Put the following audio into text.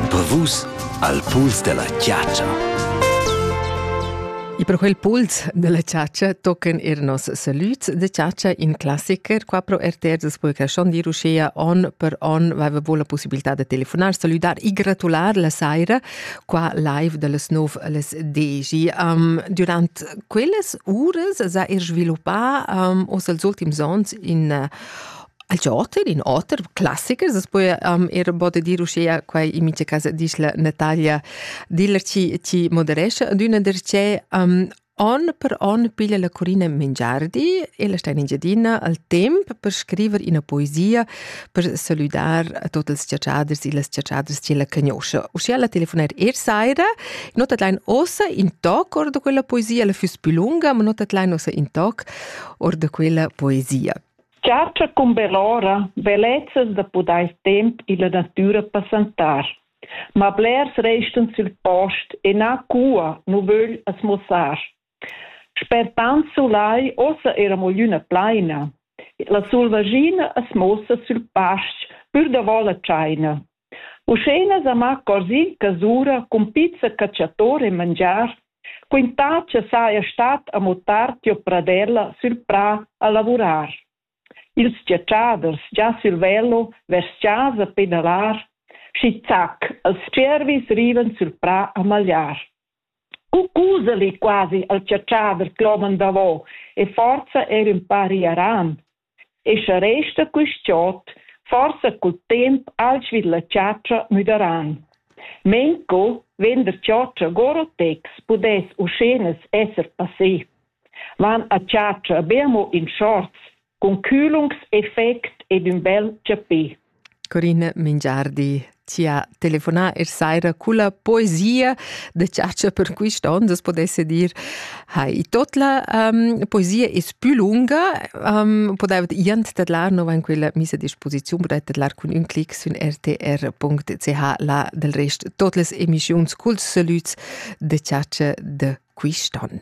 Per vus al puls della chiaccia. E per quel puls della ciaccia tochen er nos salüts de ciaccia in classiker qua pro RTR des Pulcaschon dir uschea on per on vaveva la possibilità de telefonar, saludar e gratular la saira qua live dallas 9 alles 10. Um, durant quellas uras s'ha er sviluppà um, os als ultims ons in uh, Il joter, in oter classicher, as po um, er bod dir uschea quai in mincha cas disch la Natalia Diller chi, chi moderescha d'üna derchè um, on per on piglia la Corina Mengiardi e la sta in Engiadina al temp per scriver ina poesia per saludar a tutti i ciaciaders e le ciaciaders che la conosce. Uscia la telefonar er saira, nota lein ossa in toc or da quella poesia, la füss più lunga, ma nota lein ossa in toc or da quella poesia. Chatscha cumberora bellezzas da pudair temp illa natüra passantar. Ma blers restan sül post e na cua nu vögl as muossar. Sper tant sulai uossa era mugliüna plaina. La sulvaschina as muossa sül pasch pür davo la tschaina. Uschena Zama Cosin casura cun pizza catschator e mangiar, quintà cha saja stat amo tard tiò pradella sül prà a lavurar. Ils giatschaders già sül velo vers chasa per inalar, schi zac, els tschiervis rivan sül prà a magliar. U cusali quasi al chatschader cloman davo e forza er ün pa riaran. E sche resta quist giot forsa cul temp alch vid la chatscha müdaran. Menco vegn der chatscha Gorotex pudess uschenas esser passé. Van a chatscha be amo in shorts, cun culungs effect ed ün bel chapè. Corina Mingiardi ti ha telefonà er saira culla poesia da chatscha per quist on, das podesse dir. Ha i tot la um, poesia es più lunga, um, podaivat jent tedlar nova in quella misa disposiziun, podait tedlar cun ün clic sün rtr.ch la del rest tot les emischiuns culs salüds da chatscha da quist on.